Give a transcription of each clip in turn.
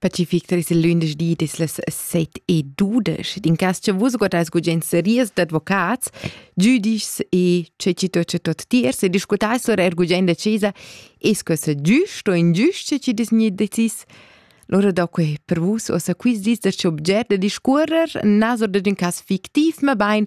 Peti Victoris il lündeschdi dis las set e dudesch. Din cas che vus guardais gugent series d'advocats, giudischs e ce ci tot ce tot tiers e discutais lur er gugent da cesa es que se giust o ingiust ci dis ni decis. Lora da que per vus osa quiz dis da ce objet da discurrer, nas oder din cas fictiv, ma bain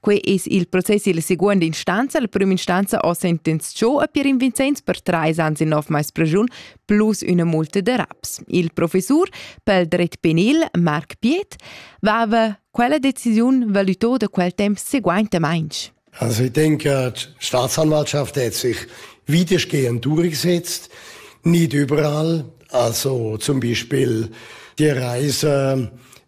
Quei eis il process illa seguonda instanza. La prima instanza ho sentenzchau a Pierin Vincenz per trais ans e nov mais pregiun plus üna multa da raps. Il professur pel dret penil, Marc Piet, vava quella decisiun valutò da quel temp seguaintamainch. Also ich denke, die Staatsanwaltschaft hat sich weitestgehend durchgesetzt, nicht überall. Also zum Beispiel die Reise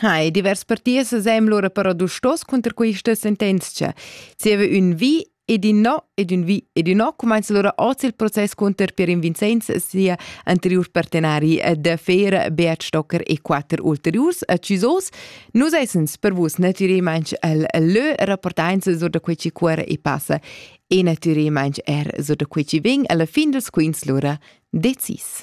Hai, divers parties sem lura però dustos cunter questa sentenzia. Zieva ün vi ed in no ed ün vi ed ün no cumanza lura oz il process cunter Pierin Vincenz e sia anteriur partenari da Fer Beat Stocker e quatter ulteriurs accisos. Nus essens per vus natüralmaing el lö rapportainz sur da quei ci cuora e passa e natüralmaing er sur da quei ci vegn alla fin dels quins lura decis.